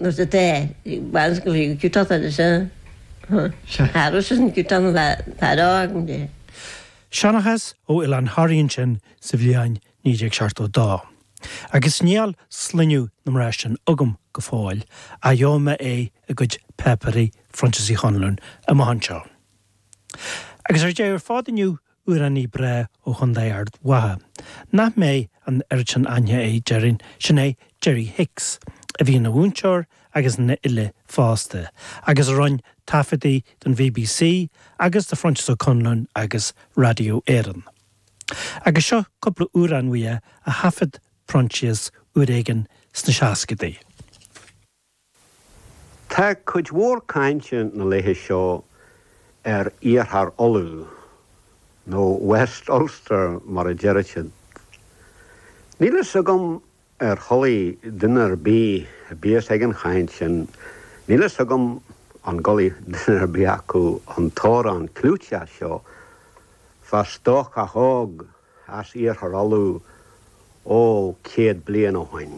nó sa tae, baineann sé go bhfuil ciotach air is ea. Tharla sé sin ciotach na fear a fhágaint de. Seanchas ó Oileán Thoraí ansin sa bhliain 1972. Agus níl sloinneadh na mná sin agam go fóill ach gheobhaidh mé é i gcuid páipéirí Phroinsias Uí Chonluain amach anseo. Agus ar deireadh ar fad inniu Amhránaí breá ó Chondae Ard Mhacha. nach mbeadh an oiread sin aithne air déarfainn, sin é Jerry Hicks, a bhí ina mhúinteoir agus ina fhile fosta, agus a rinne taifeadtaí don bbc agus do Phroinsias Ó Conluain agus Radio Éireann. Agus seo cúpla amhrán uaidh a thaifead Proinsias uair éigin sna seascaidí. Tá cuid mhór cainte na laethe seo ar Iarthar Uladh, nó West Ulster mar a deir siad. Níl fhios agam ar chualaidh duine ar bith a bíos ag an chaint sin, níl fhios agam an gcualaidh duine ar bith acu an t-amhrán clúiteach seo, fá stócach óg as Iarthar Uladh ó céad bliain ó shoin,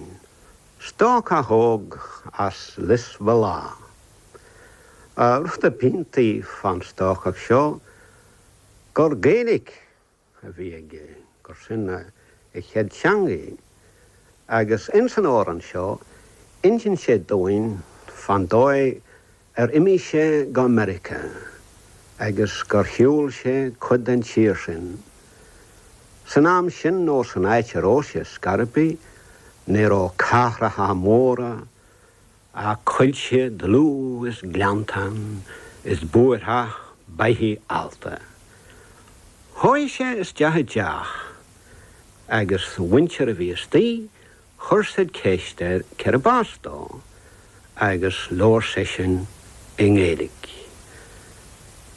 stócach óg as Lios Bhéal Átha. Rud ab iontaí fán stócach seo gur Gaeilic a bhí aige, gur sin a chéad teangaidh, agus ins an amhrán seo inseann sé dúinn fán dóigh Ar imigh sé go Meiriceá agus gur shiúl sé cuid den tír sin? San am sin nó san áit a raibh sé ar scor ar bith ní raibh cathracha móra ach coillte dlúth is gleanntáin is búirtheach beithigh allta. Chuaigh sé isteach i dteach agus an mhuintir a bhí istoigh Chuir siad ceist air cérb as dó agus labhair seisean i nGaeilic.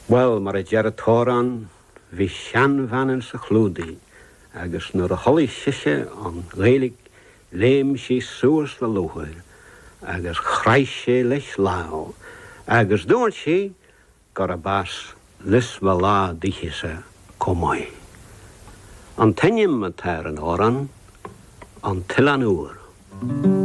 Bhuel, mar a deir a' t-amhrán, bhí seanbhean ins a' chlúdaigh agus nuair a chualaidh sise an Ghaeilic léim sí suas le lúcháir agus chraith sí leis lámh agus dubhairt sí, gurab as Lios Bhéal Átha díthese comh maith. An t-ainm atá ar an amhrán, an t-Oileán Úr.